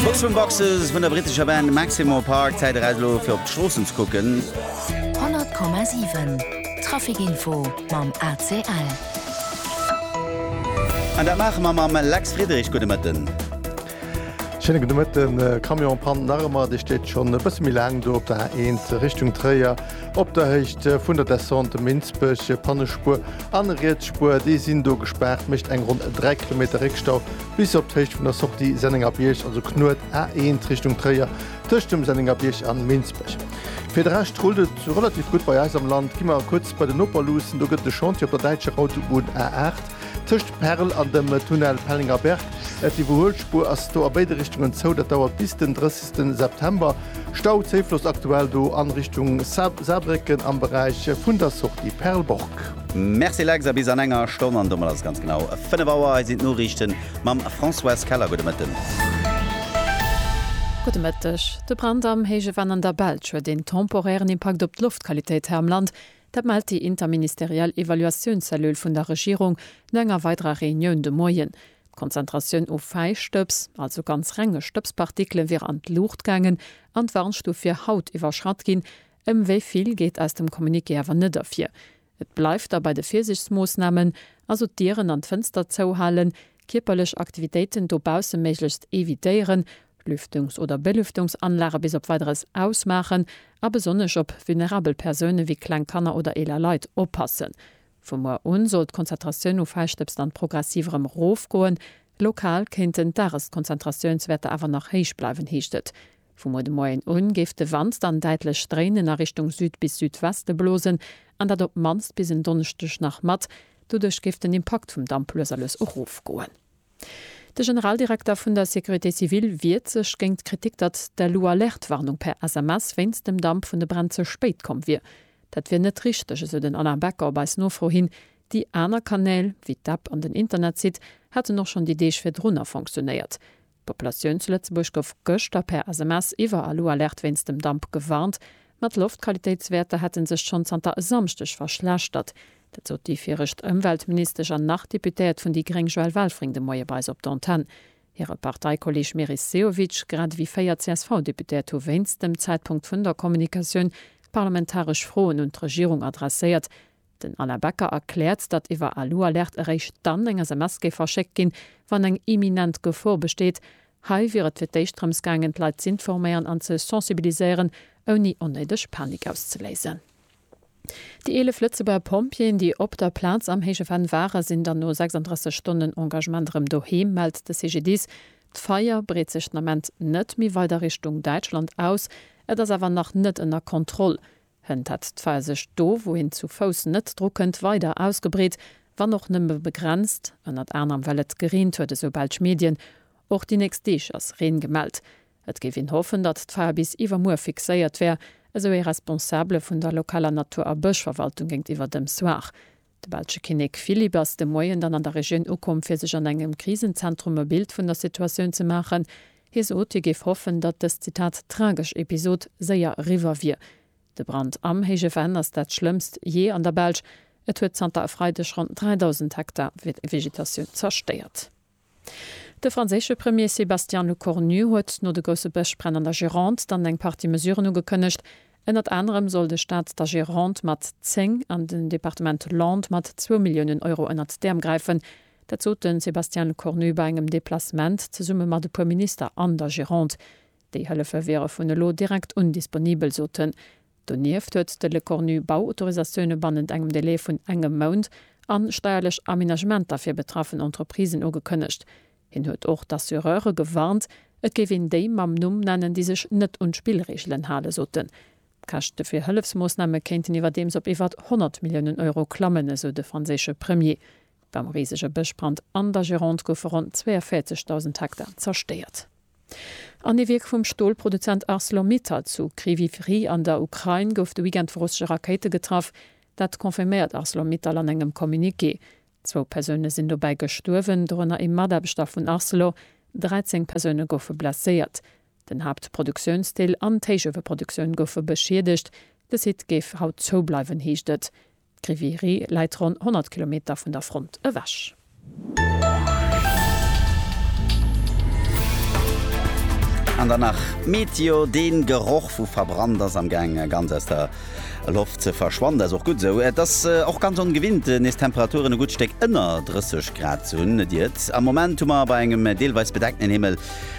Boxroom Boxes vun der brittescher Band Maximo Park, Zäit eraus elo fir op d'Stroossen ze kucken. 100,7 Trafic Info mam ACL. An dat maache mer mam Lex Friedrich. Gudde Mëtten. Schéine gudde Mëtten. Camionspann nach ëmmer, déi steet schonn e bësse méi laang do op der A1 Richtung Tréier, op der Héicht vun der Descente Minsbech. Pannespuer an Rietsspuer, déi sinn do gespaart, mécht eng ronn 3 Kilometer Réckstau bis op d'Héicht vun der Sortie Sennengerbierg, also Knuet A1 Richtung Tréier, tëscht dem Sennengerbierg an Minsbech. Fir de Rescht rullt et relativ gutt bei eis am Land. Gi mer kuerz bei den Noper luussen, do gëtt et e Chantier op der däitscher Autobunn A8 tëscht Perl an dem Tunnel Pellenger Berg. D'Iwwerhuelspuer ass do a béide Richtungen zou, dat dauert bis den 30 September. Stau, Zéifloss aktuell do an Richtung Saarbrécken am Beräich vun der Sortie Perlborg. Merci Lex, a bis an enger Stonn, an domat ass et ganz genau 5 Auer. Hei sinn d'Noriichten mam Françoise Keller. Gudde Mëtten. Gudde Mëtteg. De Brand am Héije Venn an der Belsch huet een temporären Impakt op d'Loftqualitéit hei am Land. Dat mellt déi interministeriell Evaluatiounscellule vun der Regierung no enger weiderer Reunioun de Moien. D'Konzentratioun u Fäistëbs, also ganz renge Stëbspartikele wier an d'Luucht gaangen an d'Warnstuf wier haut iwwerschratt ginn, Ëm wéi vill geet aus dem Communiqué awer net ervir. Et bleift da bei de Virsiichtsmoossnamen, also d'Dieren an d'Fënster zouhalen, kierperlech Aktivitéiten dobausse méiglechst evitéieren, Lüftungs oder Belüftungsanlage bis op Weideres ausmaachen a besonnesch op vulnerabel Persoune wéi kleng Kanner oder eeler Leit oppassen. Vu muer un soll d'Konzentratioun u Fäischtëbs dann progressiv erëm erofgoen. Lokal kéinten d'Dageskonzentratiounswäerter awer nach héich bleiwen, heescht et Vu muer de Moien un géif de Wand dann däitlech dréinen a Richtung Süd bis Südweste blosen, an dat op d'mannst bis en Donneschdeg nach mat. Doduerch géif den Impakt vum Damp lues a lues erofgoen. De Generaldirekter vun der Sécurité civile wiert sech géint d'Kritik, datt d'Alu-Alerte-Warnung per SMS wéinst dem Damp vun de Bränn ze spéit komm wier. Dat wier net richteg, esou den Alain Becker op eis Nofro hin. Déi aner Kanäl, wéi d'App an den Internetsite, hätten och schonn déi Deeg virdrunner fonctionéiert. D'Populatioun zu Lëtzebuerg gouf gëschter per SMS iwwer Alu Alert wéinst dem Damp gewarnt. Ma d'Loftqualitéitswäerter hätte sech schonn zanter e Samschdeg verschlechtert. Dat sot déi viregt Ëmweltministesch an nach Deputéiert vun déi gréng Joëlle Welfring de Moie bei eis op d'Antenn. Hire Parteikolleeg Meris Sehovic, grad ewéi véier CSV-Deputéiert hu wéinst dem Zäitpunkt vun der Kommunikatioun parlamentaresch Froen un d'Regierung adresséiert, Den Alain Becker erkläert, datt iwwer Alualerte eréischt dann eng SMS géif verschéckt ginn, wann eng imminent Gefor besteet. Hei wier et fir d'éischt drëms gaangen, d'Leit z'informéieren an ze sensibiliséieren, ouni onnéideg Panik auszeléisen. Déi 11 Lëtzebuerger Pompjeeën, déi op der Plaz am héije Venn waren, sinn dann no 36 Stonnen Engagement erëm doheem, mellt de CGDIS. D'Feier breet sech den Ament net méi weider Richtung Däitschland aus. Et ass awer nach net ënner Kontroll. Hënt hat d'Pfeilsich do, wou een zu Fouss net dru kënnt, weider ausgebreet, wann och nëmme begrenzt, ënnert anerem well et gereent huet, esou belsch Medien. Och déi nächst Deeg ass Reen gemellt. Et géif een hoffen, datt d'Feier bis iwwermuer fixéiert wär, esou ee Responsabele vun der lokaler Natur a Bëschverwaltung géintiwwer dem Soir. De belsche Kinnek Philippe ass de Moien dann an der Regioun ukomm, fir sech an engem Krisenzentrum e Bild vun der Situatioun ze maachen. Hie sot, hie géif hoffen, datt dës, Zitat, tragesch Episod séier eriwwer wier. De Brand am Héije Venn ass dat schlëmmst jee an der Belsch. Et huet zanter e Freideg ronn 3.000 Hektar Vegetatioun zerstéiert. De franséische Premier Sébastien Lecornu huet no de grousse Bëschbränn an der Gironde dann eng Partie Mesuren ugekënnegt. Ënnert anerem soll de Staat der Gironde mat 10 an den Departement Landes mat zwou Milliounen Euro ënnert d'Äerm gräifen. Dat sot de Sébastien Lecornu bei engem Deplacement zesumme mat e puer Minister an der Gironde. Déi Hëllefe wiere vun elo direkt un disponibel, sot en. Donieft huet de Lecornu Bauautorisatioune bannent engem Delai vun engem Mount a steierlech Aménagementer fir betraffen Entreprisen ugekënnegt. Hien huet och d'Assureure gewarnt, et géif een déi mam Numm nennen, déi sech net un d'Spillreegelen hale soten. D'Käschte fir Hëllefsmoossname kéinten iwwerdeems op iwwert 100 Milliounen Euro klammen, esou de franséische Premier. Beim risege Bëschbrand an der Gironde goufe ronn 42.000 Hektar zerstéiert. An ee Wierk vum Stolproduzent Arcelor-Mittal zu Kryvyiv Rih an der Ukrain gouf de Weekend vu russesche Rakéite getraff. Dat confirméiert Arcelor-Mittal an engem Communiqué. Zwou Persoune sinn dobäi gestuerwen, dorënner ee Mataarbechter vun Arcelor. 13 Persoune goufe blesséiert. Den Haaptproduktiounsdeel an d'Héichueweproduktioun goufe beschiedegt. De Site géif haut zoubleiwen, heescht et. D'Grivirie läit ronn 100 Kilometer vun der Front ewech. An dann nach d'Meteo, Dee Geroch vu verbrannt ass am gaang ganz aus der Loft ze verschwannen. Dat ass och gutt esou. Et ass och ganz ongewinnt nees Temperaturen e gutt Stéck ënner 30 Grad ze hunn. Et iert am Moment hu mer bei engem deelweis bedeckten Himmel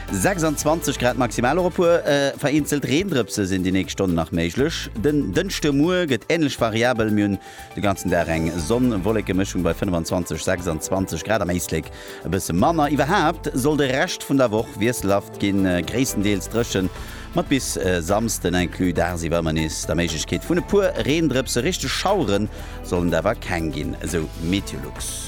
26 Grad maximal, och e puer vereenzelt Reendrëpse sinn déi nächst Stonne nach méiglech. Den Dënschde Muer gëtt änlech variabel, mir hunn de ganzen Dag eng Sonn-Wolleke-Mëschung bei 25, 26 Grad, am Éislek e bësse manner. Iwwerhaapt soll de Rescht vun der Woch wiesselhaft ginn, gréisstendeels dréchen, mat bis Samsden inclus dagsiwwer ëmmer nees der Méiglechkeet vun e puer Reendrëpse. Richteg Schauere sollen et awer keng ginn, esou Meteolux.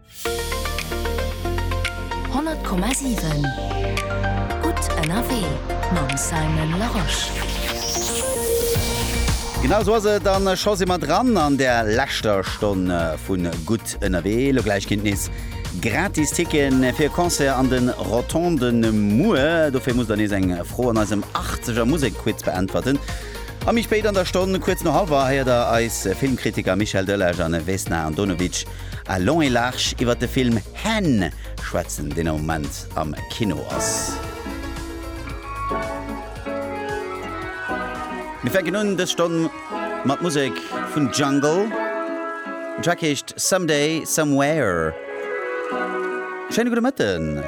100,7 Gutt ënnerwee mam Simon Larosche. Genau esou ass et, a scho si mer dran an der leschter Stonn vu Gutt ënnerwee. Elo gläich ginn et nees gratis Ticketen fir e Concert an de Rotonden. Muer dofir musst der nees eng Fro an eisem Achtzeger Musekquiz beäntwerten. A méi spéit an der Stonn, kuerz no hallwer, héiert der eis Filmkritiker Michel Delage an Vesna Andonovic A long et large iwwert de Film Hen schwätzen, deen am Moment am Kino ass. Mir fänken un dës Stonn mat Musek vun Jungle. Den Track heescht Someday Somewhere. Schéine gudde Mëtten.